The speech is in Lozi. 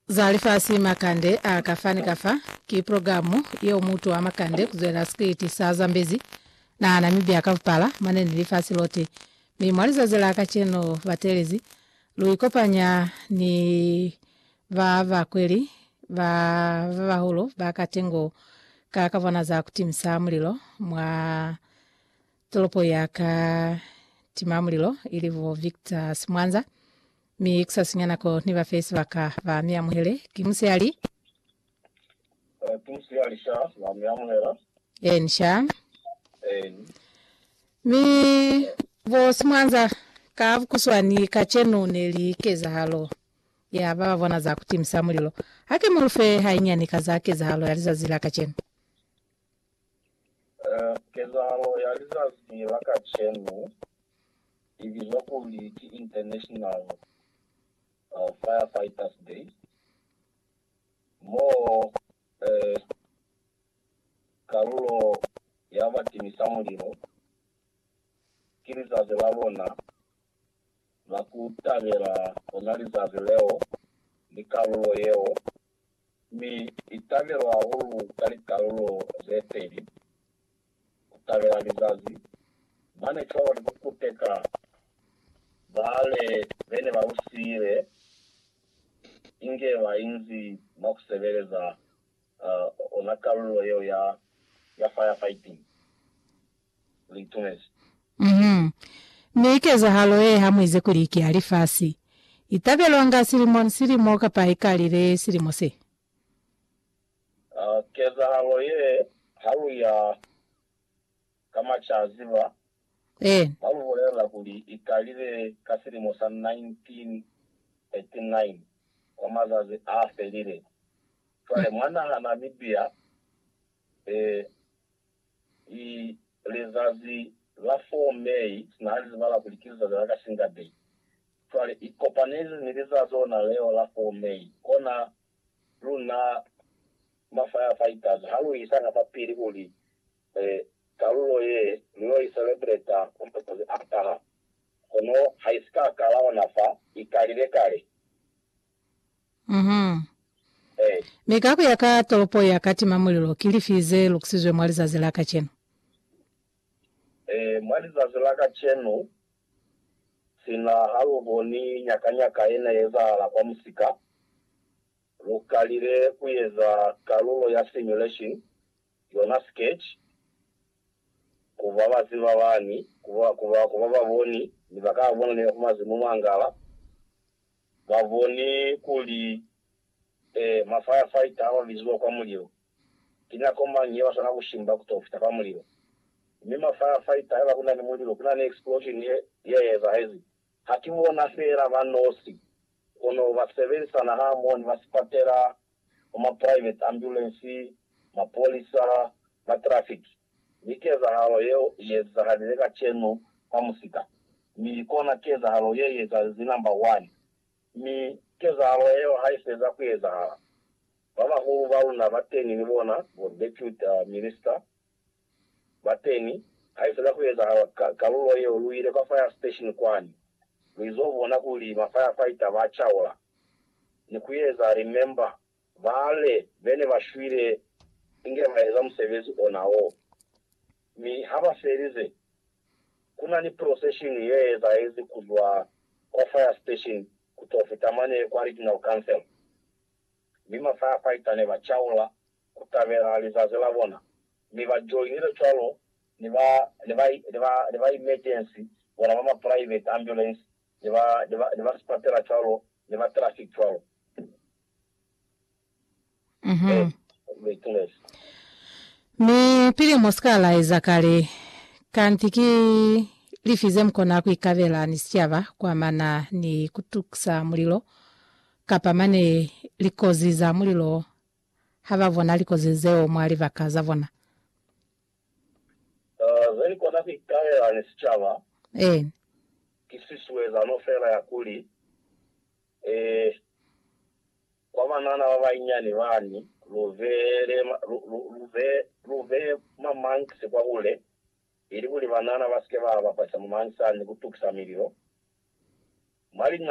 Za Lifasi Makande a ka fa ni ka fa, Ki progilamu yeo mutu wa makande ku zwelela sikiliti sa Zambezi. Nahana mibi ya ka bupala mane ni lifasi lote. Mi mwa lizazi la kacenu, batelezi, lu ikopanya ni ba bakweli ba ba bahulu ba katengo ka ka bona za ku timisa mulilo mwa Tolopo ya ka tima mulilo ili bo Victor Simwanza, mi kusasunyana ko ni ba fesi ba ka ba mi amuhele. Ki musihali. Eh, ki musihali sha, ba mi amuhela. Eeni sha. Eeni. Mi bo Simwanza, ka bukuswani kacenu neli kezahalo ya ba ba bona za kutimisa mulilo. Hake mulufe hainyani ka za kezahalo ya lizazi la kacenu. Kezahalo ya lizazi la kacenu i bizwa kuli ki International Firefighters Day, mo kalulo ya batimisa mulilo ki lizazi la bona la ku tabela ona lizazi leo ni kalulo yeo Mi i tabelwa hahulu ka likalulo ze peli, ku tabela lizazi, mane cwalo ni ku kuteka bale bene ba lu siile inge ba inzi mwa ku sebeleza ona kalulo yeo ya ya firefighting. Likreste. Uhum. Mi kezahalo ye ha muize kuli ki ya lifasi, i tabelwanga silimo ni silimo kapa i kalile silimo se? Uh, kezahalo ye, ha lu ya ka macazi ba, Eh. ba lu bulelela kuli i kalile ka silimo sa 1989, kwa mazazi a felile. Cwale mwa nahana mi bia, eh, Ki lizazi la 4 May, sinalizibala kuli ki lizazi la Kashinga Day. Cwale i kopanezi ni lizazi lona leo la 4 May, kona luna ma firefighters ha lu isa kapapili kuli kalulo ye lu yo i celebreta kwa mazazi a taha. Kono ha i si ka kala ona fa, i kalile kale. Mhm. Ee. Mi ka ku ya ka tolopo ya ka tima mulilo, ki lifi ze lukisizwe mwa lizazi la kacenu? Ee, mwa lizazi la kacenu, sina ha lu boni nyaka-nyaka ye ne ezahala kwa musika, lu kalile ku eza kalulo ya simulation, yona sketch, ku ba ba ziba bani, ku ba, ku ba, ku ba ba boni, mi ba ka bona ni le ku mazimu mwangala. Ba boni kuli ee ma firefighter ha ba biziwa kwa mulilo, ki nako mañi ye ba swanela ku shimba ku to fita fa mulilo. Mi ma firefighter haiba ku na ni mulilo, ku na ni explosion ye ye ezahezi, ha ki bona fela ba nosi, kono ba sebelisana ha moho ni ba sipatela, bo ma private ambulance, mapolisa, ba traffic. Mi kezahalo yeo i ezahalile kacenu kwa musika, mi kona kezahalo ye ye zazi namba wani. Mi kezahalo yeo ha i feza ku ezahala, ba bahulu ba luna bateñi ni bona, bo deputy minister bateñi, ha i feza ku ezahala, kalulo yeo lu ile kwa fire station kwani, lu izo bona kuli ma firefighter ba caula ni ku eza remember Bale be ne ba shwile inge ba eza musebezi ona wo. Mi ha ba felize, ku na ni proseshini ye ezaezi ku zwa kwa fire station ku t'o fita mane kwa Regional Council. Mi ma firefighter ne ba caula ku tabela lizazi la bona, mi ba joinile cwalo ni ba, ni ba, ni ba, ni ba emergency bona ba ma private ambulance Ni ba, ni ba, ni ba sipatela cwalo, ni ba traffic cwalo. Amen. Mhm. Ni tulezi. Mi pili mo si ka laeza kale, kanti ki lifi ze mu kona ku ikabela ni sicaba ku amana ni ku tusa mulilo, kapa mane likozi za mulilo ha ba bona likozi zeo mwa libaka za bona? Ze ni kona ku ikalelana ni sicaba ki susuezano fela ya kuli, Kwa banana ba banyinyani bani, lu bee mamanksi kwa hule, ilikuli banana ba si ke ba bapalisa mamanksi ani ni ku tukisa mililo.